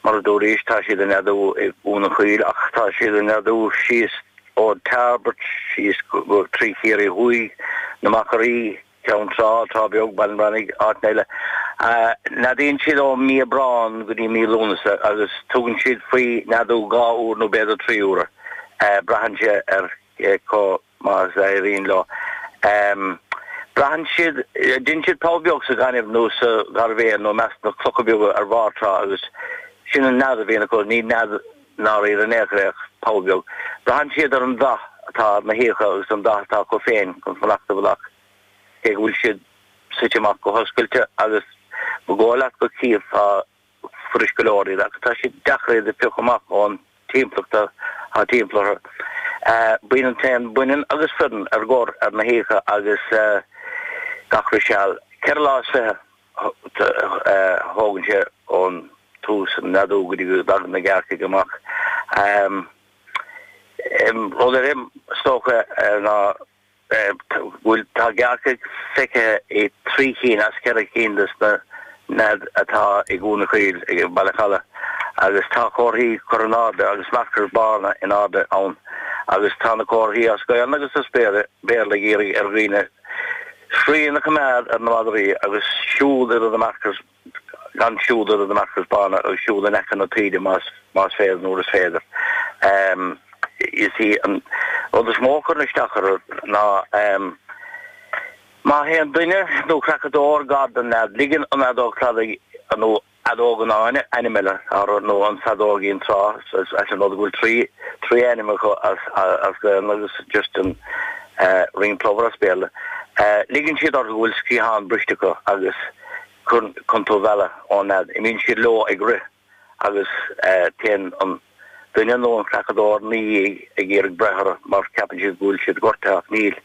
Mar a dúraís, tá siad ag neadú i gCuan an Chaoil ach tá siad ag neadú síos ó Thairbeart, síos go trí Chiarraí Thuaidh, na Machairí, Ceann Trá, Trá Bheag, Baile an Reannaigh, áiteanna eile. Neadaíonn siad ó Mí Aibreán go dtí Mí Lúnasa agus tugann siad faoi neadú dhá uair nó b'fhéidir trí uair, braitheann sé ar chomh. maith is a éiríonn leo. Braitheann siad, déanann siad poll beag sa ghaineamh nó sa ghairbhéal nó i measc na clocha beaga ar bharr trá agus sin an nead a bhíonn acu. Ní nead i ndáiríre in aon chor é ach poll beag. Braitheann siad ar an dath atá ar na huibheacha agus an dath atá acu féin chun fanacht i bhfolach, cé go bhfuil siad suite amach go hoscailte agus ba dhóigh leat go gcífeá fuirist go leor iad ach tá sé deacair iad a phiocadh amach ón timpeallacht atá timpeall orthu. Bíonn an t-éan baineann agus fireann ar gor ar na huibheacha agus gach re seal. Ceithre lá is fiche a thógann sé ón tús an neadú go dtí go dtagann na gearrcaigh amach. An rud eile is dócha ná. bhuel tá gearrcaigh feicthe i dtrí chinn as ceithre cinn des na nead atá i gCuan an Chaoil i mBaile an Chalaidh agus tá comharthaí curtha in airde agus markers bána in airde ann agus tá na comharthaí as Gaolainn agus as Béarla ag iarraidh ar dhaoine srian a choimeád ar na madraí agus siúl idir na markers gan siúl idir na markers bána ach siúl in aice na taoide más más féidir nuair is féidir. Is é an rud is mó a chuireann isteach orthu ná má théann duine nó creachadóir gar don nead, ligeann an fheadóg chladaigh nó feadóg an fháinne ainm eile orthu, nó an feadóigín trá, deas an rud go bhfuil trí trí ainm acu as as Gaelainn agus just an ringed plover as Béarla. Ligeann siad orthu go bhfuil sciathán briste acu agus. Chun tú a mhealladh ón nead, imíonn siad leo ag rith agus téann an duine nó an creachadóir 'na dhiaidh ag iarraidh breith orthu mar ceapann siad go bhfuil siad gortaithe ach níl.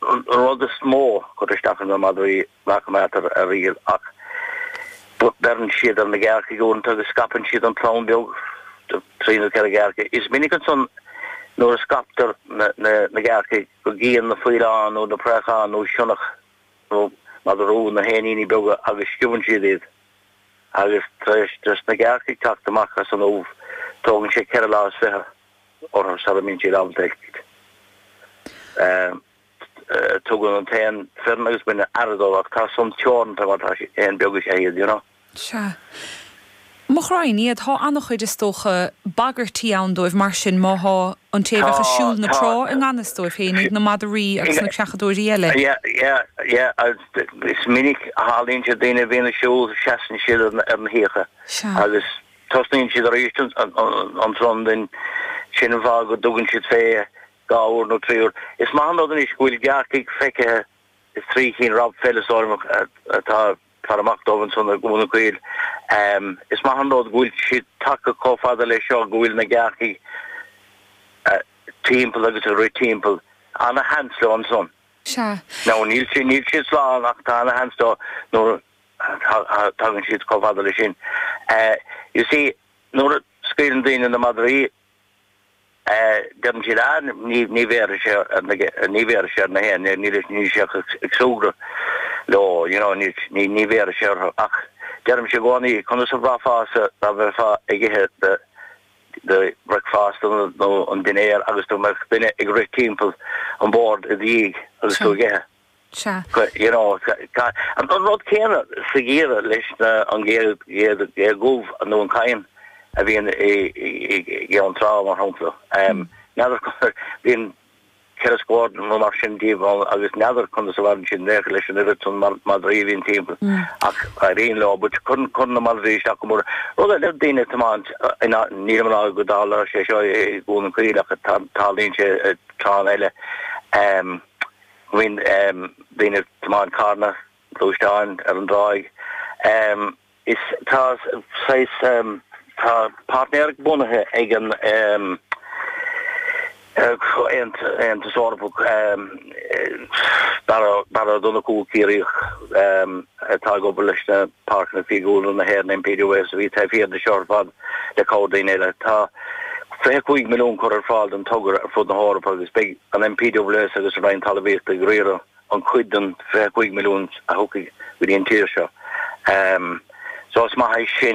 An rud is mó a chuireann isteach orthu ná madraí ná coimeádtar ar iall ach beireann siad ar na gearrcaigh uaireanta agus scaipeann siad an chlann bheag de trí nó ceithre ghearrcaigh. Is minic ansan nuair a scaiptear na gearrcaigh go gcíonn na faoileáin nó na préacháin nó sionnach, nó madra rua na héiníní beaga agus sciobann siad iad, agus tar éis dos na gearrcaigh teacht amach as an ubh, tógann sé ceithre lá is fiche orthu sara mbíonn siad ábalta eitilt. Tugann an t-éan fireann agus baineann aire dóibh, ach tá san teoranta mar tá siad, éan beag is ea iad, you know. Sea. Mo ghraidhin iad, thá an-chuid is dócha bagairtí ann dóibh, mar sin, má thá an té a bheadh ag siúl na trá i ngan fhios dóibh féin, iad na madraí agus na creachadóirí eile. Is minic a tharlaíonn sé daoine a bhíonn ag siúl, seasann siad ar na huibheacha agus tosnaíonn siad arís an Trondin, sin an fáth go dtugann siad fé dhá uair nó trí uair. Is maith an rud anois go bhfuil gearrcaigh feicthe, is trí chinn Rob Pheles orm atá Faire amach dóibh ansan i gCuan an Chaoil. Is maith an rud go bhfuil siad tagtha comh fada leis seo, go bhfuil na gearrcaigh timpeall agus ag rith timpeall. Ana-sheans leo ansan. Sea. Now níl siad, níl siad slán ach tá ana-sheans leo nuair a tagann siad comh fada leis sin. You see, nuair a scaoileann daoine na madraí, Deireann siad, ah, ní bhéarfaidh sé ar na, ní bhéarfaidh sé ar na héin, níl sé, níl sé ach ag súgradh leo, you know, ní, ní bhéarfaidh sé orthu. Ach deirimse i gcónaí, conas a bhraithfeása dá bheifeá ag ithe do, do bhricfeasta nó an dinnéar agus dá mbeadh duine ag rith timpeall an bord i do dhiaidh agus tú ag ithe? Sea. You know, sea. An rud céanna sa gheimhreadh leis na, an ghé dhubh nó an cadhan a bhíonn i gCeann Trá, mar shampla. N'fheadar cad, bíonn ceithre scór nó mar sin díobh ann agus n'fheadar conas a mhaireann siad beo leis an oiread san madraí a bhíonn timpeall ach éiríonn leo. But cuireann, cuireann na madraí isteach go mór. Rud eile ná daoine ag tiomáint, nílim á rá go dtarlaíonn sé seo i gCuan an Chaoil ach tarlaíonn sé i dtránna eile. Bíonn daoine ag tiomáint carranna, gluaisteáin ar an dtráigh is tá saghas tá páirtnéireacht bunaithe ag an Aontas Eorpach Barra Ó Donnchú, Ciarraíoch atá ag obair leis na Páirceanna Fiadhúlra na hÉireann, NPWS, a bhí taobh thiar de seo ar fad le cabhair daoine eile. Tá 25 milliún curtha ar fáil don togra ar fud na hEorpa agus beidh an NPWS agus an Roinn Talmhaíochta ag riaradh an chuid den 25 milliún a thiocfaidh go dtí an tír seo. So is maith é sin.